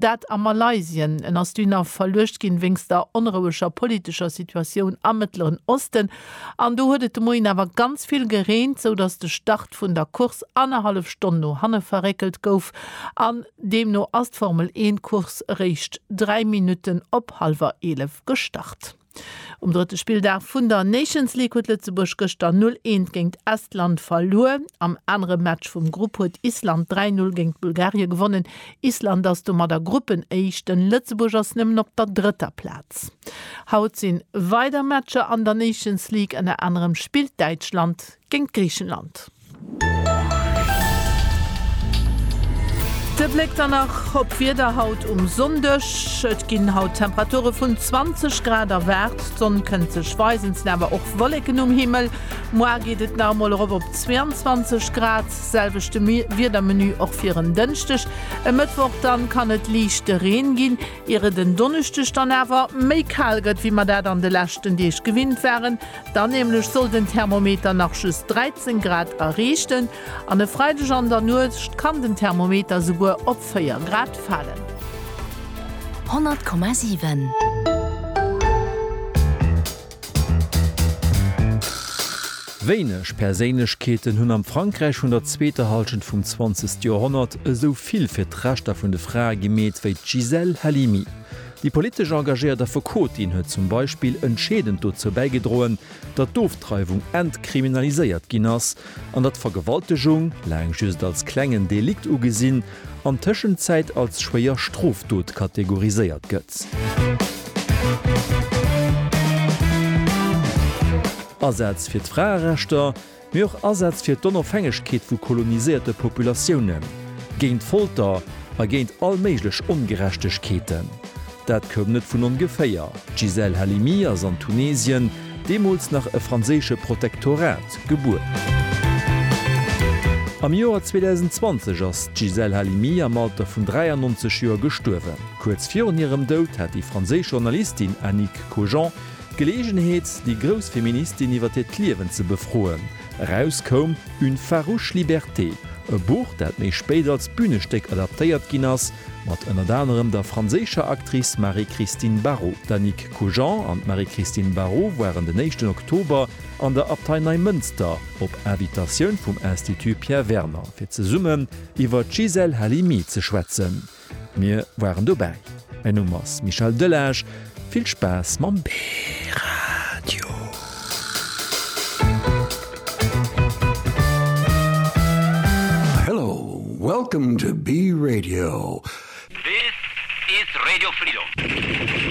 Dat a Malaysien. En ass dunner verluecht ginn wéinst der onroueger politescher Situatioun am Mëttleren Osten. An do huet et de Moien awer ganz vill gereent, sou datt de Start vun der Course annerhallef Stonn no hanne verréckelt gouf. An deemno ass d'Formel-Eent-Course eréischt dräi Minutten op hallwer eelef gestart. Um drëtte Spilldag vun der Nations League huet Lëtzebuerg gëschter 0 eent géint Estland verluer. Am anere Match vum Grupp huet Island 3 Null géint Bulgarie gewonnen. Island ass domadder Gruppenéischten. Lëtzebuerg ass nëmmen op der drëtter Plaz. Haut sinn weider Matcher an der Nations League. Ënner anerem spillt Däitschland géint Griichenland. De Bléck dann nach op d'Wieder haut um Sonndeg. Et ginn haut Temperature vun 20 Grad erwaart. D'Sonn kënnt sech weisen, 't sinn awer och Wolleken um Himmel. Moar geet et nach emol erop op 22 Grad. Selwechte Wiedermenu och fir en Dënschdeg. E Mëttwoch dann kann et liichte Reen ginn, ier et en Donneschdeg dann awer méi kal gëtt, wéi mer dat an de leschten Deeg gewinnt waren. Dann nämlech soll den Thermometer nach just 13 Grad erreechten an e Freideg an der Nuecht kann den Thermometer souguer op 4 Grad falen. 100,7. Wéineg Perséinlechkeeten hunn am Frankräich vun der zweeter Hallschent vum zwanzegste Joerhonnert esou vill fir d'Rechter vun de Frae gemeet wéi d'Gisèle Halimi. Déi politesch engagéiert Affekotin huet zum Beispill entscheedend dozou bäigedroen, datt d'Ofdreiwung entkriminaliséiert ginn ass, an datt Vergewaltegung, laang just als klengen Delikt ugesinn, an Tëschenzäit als schwéier Strofdot kategoriséiert gëtt. Asätz fir d'Fraerechter, Mee och Asätz fir d'Onofhängegkeet vu koloniséierte Populatiounen, géint Folter a géint all méiglech Ongerechtegkeeten. Dat koum net vun ongeféier, d'Gisèle Halimi ass an Tunesien, deemools nach e franséische Protektorat, gebuer. Am Joer 2020 ass d'Gisèle Halimi am Alter vun 93 Joer gestuerwen. Kuerz virun hirem Doud hat déi franséisch Journalistin Annick Cogent D'Geleegenheet, déi grouss Feministin iwwer hiert Liewen ze befroen. Eraus koum Une farouche liberté, e Buch, dat méi spéit als Bünestéck adaptéiert ginn ass, mat ënnert anerem der franséischer Actrice Marie-Christine Barraud. D'Annick Cugent an d'Marie-Christine Barraud waren den éischten Oktober an der Abtei Neimënster, op Invitatioun vum Institut Pierre Werner, fir zesummen iwwer d'Gisèle Halimi ze schwätzen. Mir waren dobäi. Mäin Numm ass Michel Delage. Vill Spaass mam B-Radio! Hello, welcome to B-Radio. This is Radio Freedom.